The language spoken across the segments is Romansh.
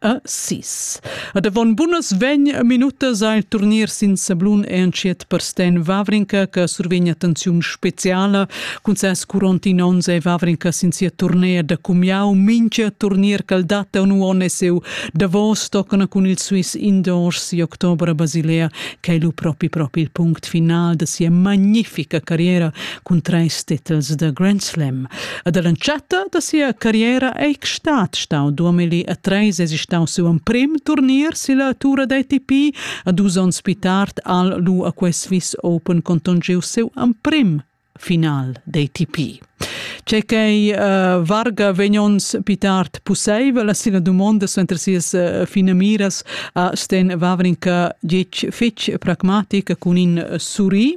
a sis. Ad avon bunas vegn minutas al turnir sin sablun e entschiet per Sten Wawrinka che survegn attenziun speciala cun ses curontin onns e Wawrinka sin sia turnea da cumiau mincha turnier ch'el dat un uonn e seu Davos toccana cun il Swiss Indoors si october a Basilea che lu propi propi il punct final da sia magnifica carriera cun treis titels da Grand Slam. E dall'entschatta da sia carriera ei stat stau duamilli e treis e stau siu emprim turnier silla tura d'ATP a dus onns pli tard al lu a quest Swiss Open conton giu siu emprim final d'ATP. C'è che uh, varga vegnons pitart pusseivel la sina dumonda suenter sias uh, fine miras a Sten Wawrinka gic fitch pragmatica cun in uh, suri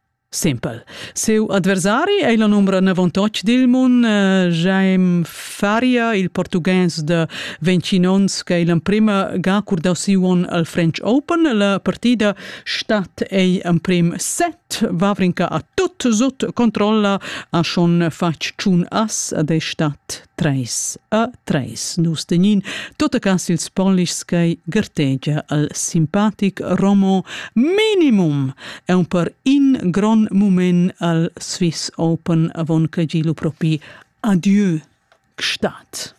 Simpel. Siu adversari ei la numbra 98 dil mund, eh, Jaime Faria, il portugues de 21 onns, che è l'emprima ga curdau siu onn al French Open. La partida stat ei emprim set, Vavrinka a tut sut controlla, ha schon fatg tschun as ed ei stat Treis a treis nus tegnin tutta cas ils polischs che gartegia al simpatic Romo minimum è un per in gron mumen al Swiss Open avon che gilu propi adieu gestat.